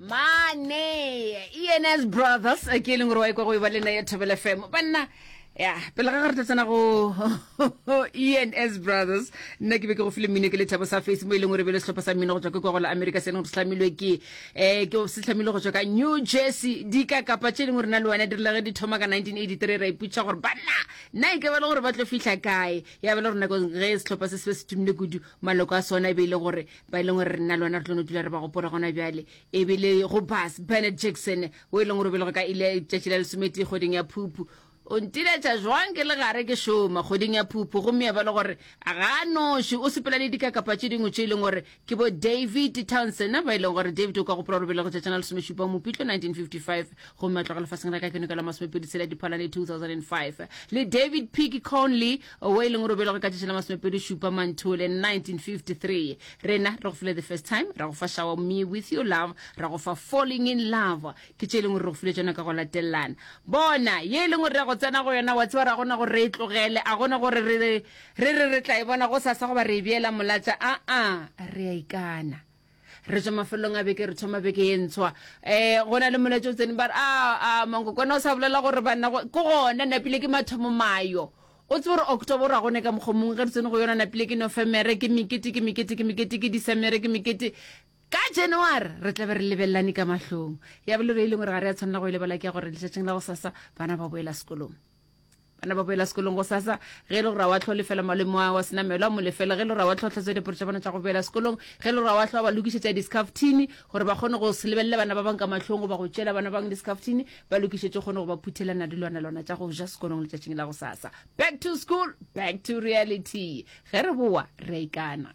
mane ens brothers ke e leng gore wa ikwa go e ba le na ya thobela fm banna ya pele ga re tla tsena go ens brothers nna ke be ke go file mmino ke lethabo sa face mo e leng gore be le setlhopha sa mmino go tswa ke kwa go la america se e leng gore se tlhamilwe ke um ke se tlhamilwe go tswa ka new jersey di ka kapa tse e leng gore na le wena dirile ge di thoma ka 1983 ra iputsa gore banna nna e ke ba le gore ba tlo fitlha kae ya ba le gore nako ge setlhopha se se be se tumile kudu maloko a sona e be e le gore ba e leng gore re nna le ona re tlo no dula re ba gopola gona bjale e be le go bas bennett jackson o e leng gore o belego ka ile tšatši la lesometee kgweding ya phuphu o ntiletša jwang ke le gare ke šoma kgweding ya phuphu gomme ya ba le gore ga noši o sepela le dikakapa tše dingwe tše e leng gore ke bo david townsend ba e leng gore david o ka gopola gore belego tšatšana lesomešupa mopitlo 1955 gomme a tloga lefaseng la ka ke nokela masomepedi tshela diphalane 2005 le david pick conley owe e leng gore o belegwe ka tšatši la masomepedi šupa manthole 1953 rena re go file the first time ra go fa shower me with your love ra go fa falling in love ke tše e leng gore re go file tšona ka go latelelana bona ye e leng gore re ya go tsena go yona wa tseba ra gona gore re e tlogele a gona gore re re re tla e bona go sasa goba re e beela molatša aa re a ikana re tswa mafelong a beke re thoma beke ye ntshwa um go na le moletso o tseneng ba re a ah, ah, mankokwana o sa bolela gore banna ke gona napile ke mathomo mayo o tse gore october ra gone ka mokgwa mongwe ge re tsene go yona napile ke nofemere ke mekete ke mekete ke mekete ke disemere ke mekete ka january re tla be re lebelelane ka mahlong ya bolero e leng gore ga re ya tshwanela go e lebala ke ya gore letšatšing la go sasa bana ba boela sekolong bana ba boela sekolong go sasa ge e le gore a wa tlho lefela malemo a wa senamelo a mo lefela ge e le gore a wa tlho tlhatso diporo tša bona tša go boela sekolong ge e le gore a wa tlho ba lokišetša discaftini gore ba kgone go se lebelele bana ba bang ka mahlong goba go tšela bana bang discaftini ba lokišetše kgone go ba phuthelana dilwana lwana tša go ja sekolong letšatšing la go sasa back to school back to reality ge re boa re a ikana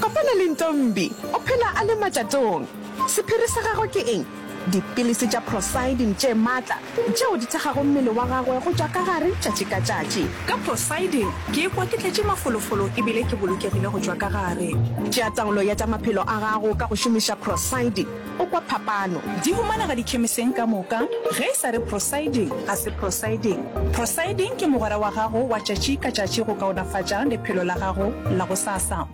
Kopana le Ntombi, o phela a le matšatong. Sephiri sa gagwe ke eng? Dipilisi tša prosidin tše matla tšeo di thekgago mmele wa gagwe go tšwa ka gare tšatši ka tšatši. Ka prosidin ke ikwa ke tletše mafolofolo e bile ke bolokegile go tšwa ka gare. Tšea taolo ya tša maphelo a gago ka go šomiša prosidin. O kwa phapano? Di humanega dikhemiseng ka moka. Ge e sa re prosiding, ga se prosiding. Prosiding ke mogwera wa gago wa tšatši ka tšatši go kaonafatša lephelo la gago la gosasa.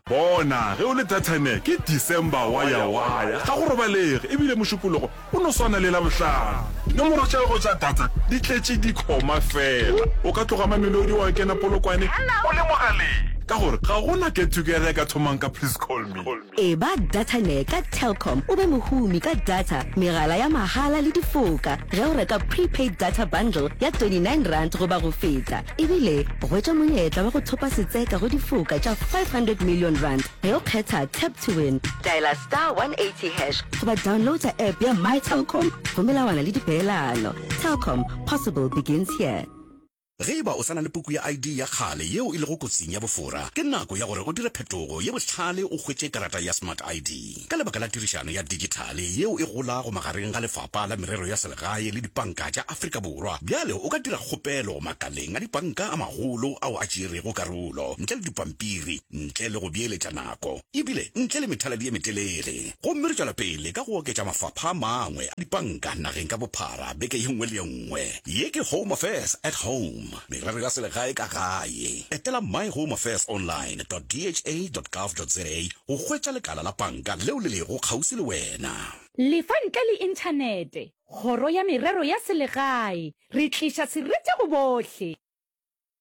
Bona, ge o le Datane, ke December wa ya wa ya, ga go robalege, e bile Mošupologo o no swana le Labohlano. Dinomoro tša gago tša data di tletše dikhoma fela. O ka tloga Mamelodi wa kena Polokwane o le mogaleng, ka gore ga go na get-together e ka thomang ka Please Call Me. Eba Datanyre ka Telkom o be mohumi ka data, megala ya mahala le difoka ge o reka prepaid data bundle ya R29 goba go feta. Ebile hwetša monyetla wa go thopa setseka go difoka tša R500 million ge o kgetha Tap to Win. Dialer star 180 hash goba downloada app ya MyTelkom go melawana le dipeelano. Telkom, possible begins here. Ge e ba o sa na le puku ya ID ya kgale yeo e lego kotsing ya bofora, ke nako ya gore o dire phetogo ye bohlale o hwetše karata ya Smart ID. Ka lebaka la tirišano ya digithale yeo e golago magareng ga Lefapha la Merero ya Selegae le dipanka tša Afrika Borwa, bjale o ka dira kgopelo makaleng a dipanka a magolo ao a tšeerego karolo ntle le dipampiri ntle le go beeletša nako. ebile ntle le methaladi ye metelele. Gomme re tšwela pele ka go oketša mafapha a mangwe a dipanka nageng ka bophara beke ye nngwe le ye nngwe. Ye ke Home Affairs at Home, Merero ya Selegae ka Gae. Etela myhomeaffairsonline dot dha dot gov dot za go hwetša lekala la panka leo le lego kgauswi le wena. Lefa ntle le Inthanete, Kgoro ya Merero ya Selegae, Re tliša sereti go bohle!